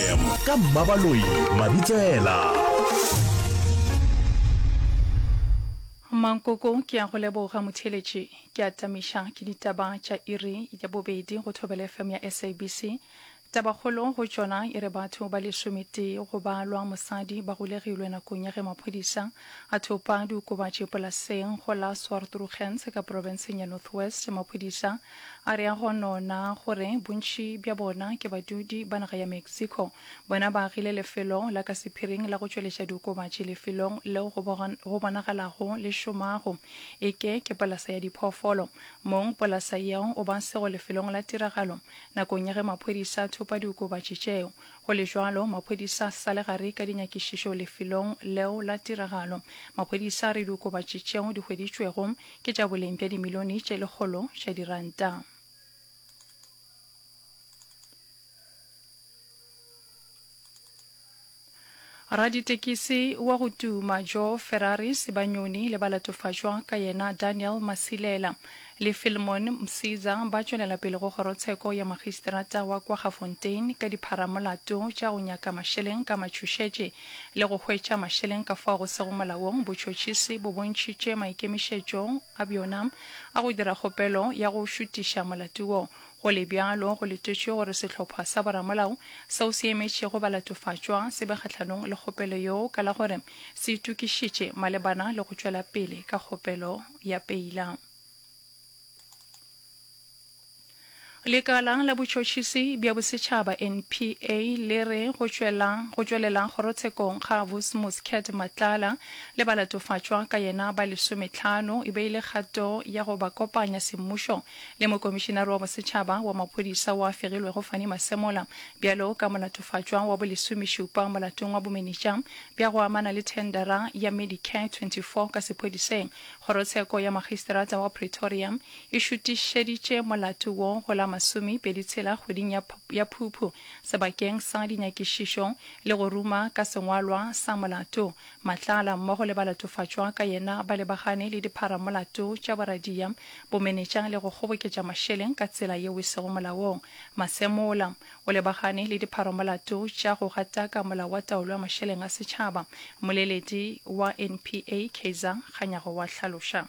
fm ka mmabaloi mabitsela Mankoko ke ya go leboga motheeletši. Ke a tamiša ke ditaba tša iri ya bobedi go Thobela FM ya SABC. Tabakgolo go tšona e re batho ba lesometee go ba lwa mosadi ba golegilwe nakong ya ge maphodisa a thopa diokobatši polaseng go la Swartrugens ka profenseng ya North West. Maphodisa A re a go no na gore bontši bja bona ke badudi ba naga ya Mexico. Bona ba agile lefelo la ka sephiring la go tšweletša diokobatši lefelong leo go bogan, go bonagalago le šomago e ke ke polasa ya diphoofolo. Mong polasa yeo o ba sego lefelong la tiragalo nakong ya ge maphodisa a thopa diokobatši tšeo. Go le bjalo, maphodisa a sa le gare ka dinyakišišo lefelong leo la tiragalo. Maphodisa a re diokobatši tšeo di hweditšwego ke tša boleng bja dimilione tše lekgolo tša diranta. Raditekisi wa go tuma Joe Ferrari Sebanyoni le ba latofatšwa ka yena Daniel Masilela le Filmon Msiza ba tšwelela pele go kgorotsheko ya magisterata wa kwa Gafontein ka dipharamolato tša go nyaka mašeleng ka matšhošetše le go hwetša mašeleng ka fao go sego molaong, botšhotšhisi bo bontšhitše maikemišetšo a bjona a go dira kgopelo ya go šutiša molato wo. Go le bjalo, go letetšwe gore sehlopha sa boramolao seo se emetšego balatofatšwa se be kgahlanong le kgopelo yeo ka la gore se itokišitše malebana le go tšwela pele ka kgopelo ya peila. Lekala la Botšhotšhisi bja Bosetšhaba, NPA, le re go tšwela go tšwelela kgorotshekong ga Vus Muscat Matlala le balatofatšwa ka yena ba lesometlhano e be e le kgato ya go ba kopanya semmušo le Mokomišinare wa Bosetšhaba wa Maphodisa wa fegilwego Fanny Masemola bjalo ka molatofatšwa wa bolesomešupa molatong wa bomenetša bja go amana le thendera ya Medicare 24 ka sephodiseng. Kgorotsheko ya Magisterata wa Pretoria e šutišeditše molato wo go la masomepedi tshela kgweding ya, ya Phuphu sebakeng sa dinyakišišo le go ruma ka sengwalwa sa molato. Matlala mmogo le balatofatšwa ka yena ba lebagane le dipharamolato tša boradia, bomenetša le go kgoboketša mašeleng ka tsela yeo e sego molaong. Masemola o lebagane le dipharamolato tša go gataka molao wa taolo ya mašeleng a setšhaba, mmoleledi wa NPA Kaizer Kganyago wa hlaloša.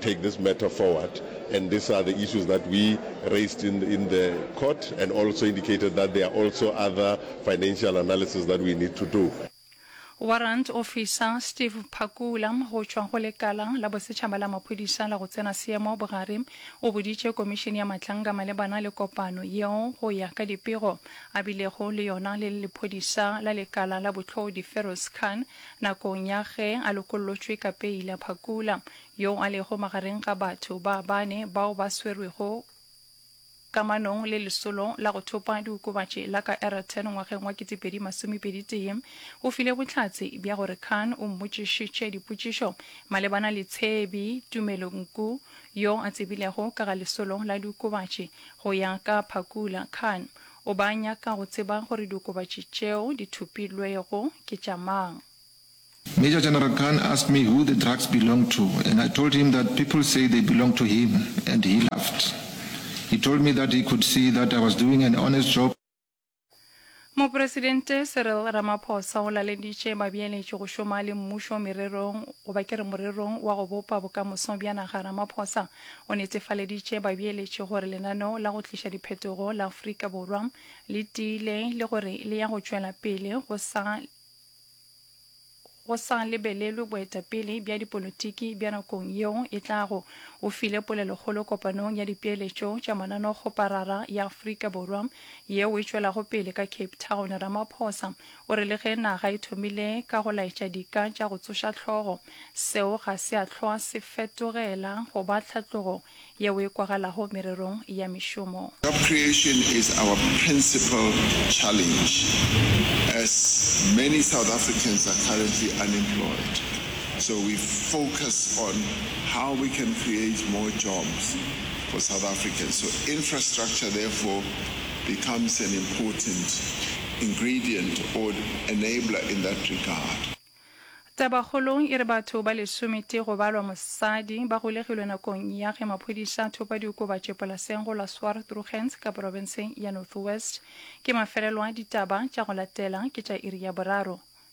take this matter forward and these are the issues that we raised in in the court and also indicated that there are also other financial analysis that we need to do. Warrant Officer Steve Phakula go tšwa go Lekala la Bosetšhaba la Maphodisa la go Tsena Seemo Bogare o boditše Komišene ya Matlanga malebana le kopano yeo go ya ka dipego a bilego le yona le lephodisa la lekala la Bohlodi Feroz Khan Nakong ya ge a lokollotšwe ka peila Phakula, yoo a lego magareng ga batho ba bane bao ba swerwego kamanong le lesolo la go thopa diokobatši la ka Aeroton ngwageng wa 2021, o file bohlatse bja gore Khan o mmotšišitše dipotšišo malebana le Tshebi Tumelo Nku, yo a tsebilego ka ga lesolo la diokobatši. Go ya ka Phakula, Khan O ba nyaka go tseba gore diokobatši tšeo di thopilwego ke tša mang. Major General Khan asked me who the drugs belonged to and I told him that people say they belonged to him and he laughed. He told me that he could see that I was doing an honest job. Mopresidente Cyril Ramaphosa o laleditše babeeletši go šoma le mmušo mererong, goba ke re morerong wa go bopa bokamoso bja naga Ramaphosa o netefaleditše babeeletši gore lenaneo la go tliša diphetogo la Afrika Borwa le tiile le gore le ya go tšwela pele go sa go sa lebelelwe boetapele bja dipolotiki bja nakong yeo e tlago, o file polelokgolo kopanong ya dipeeletšo tša mananokgoparara ya Afrika Borwa yeo e tšwelago pele ka Cape Town. Ramaphosa O re le ge naga e thomile ka go laetša dika tša go tsoša hlogo, seo ga se a hlwa se fetogela go ba tlhatlogo yeo e kwagalago mererong ya mešomo. Job creation is our principal challenge as many South Africans are currently unemployed, so we focus on how we can create more jobs for South Africans, so infrastructure therefore becomes an important ingredient or enabler in that regard. Tabakgolo e re batho ba lesometee go balwa mosadi ba golegilwe nakong ya ge maphodisa a thopa diokobatši polaseng go la Swartrugens ka porofenseng ya North West. Ke mafelelo a ditaba tša go latela ke tša iri ya boraro.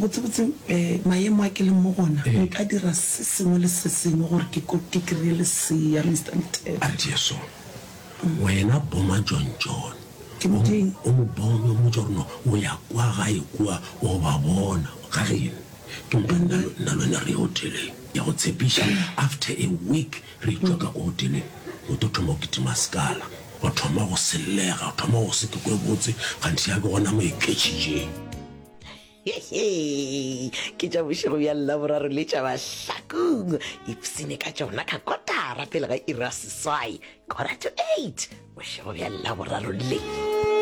Botsebotse mayemo a ke leng mo gona nka dira se sengwe le se sengwe gore ke ko ke kry-e lesea Mister Mthethwa. A re Jesu, wena boma John John. Ke mo ding. O mo bome o mmotse gore no o ya kwa gae kua o ba bona ga geno. Ke mpa nna nna lwena re ye hoteleng ke a go tshepiša after a week Re itwa ka ko godimo go to thoma go kitima sekala, go thoma go sellega, go thoma go se ke kwe botse, kganthe ya ke gona mo e ketšhitšeng. Hehe, ke tša bošego bja Laboraro le tša Mahlakong, ipsene ka tšona ka kotara pele ga iri ya seswai, quarter to eight, bošego bja Laboraro le.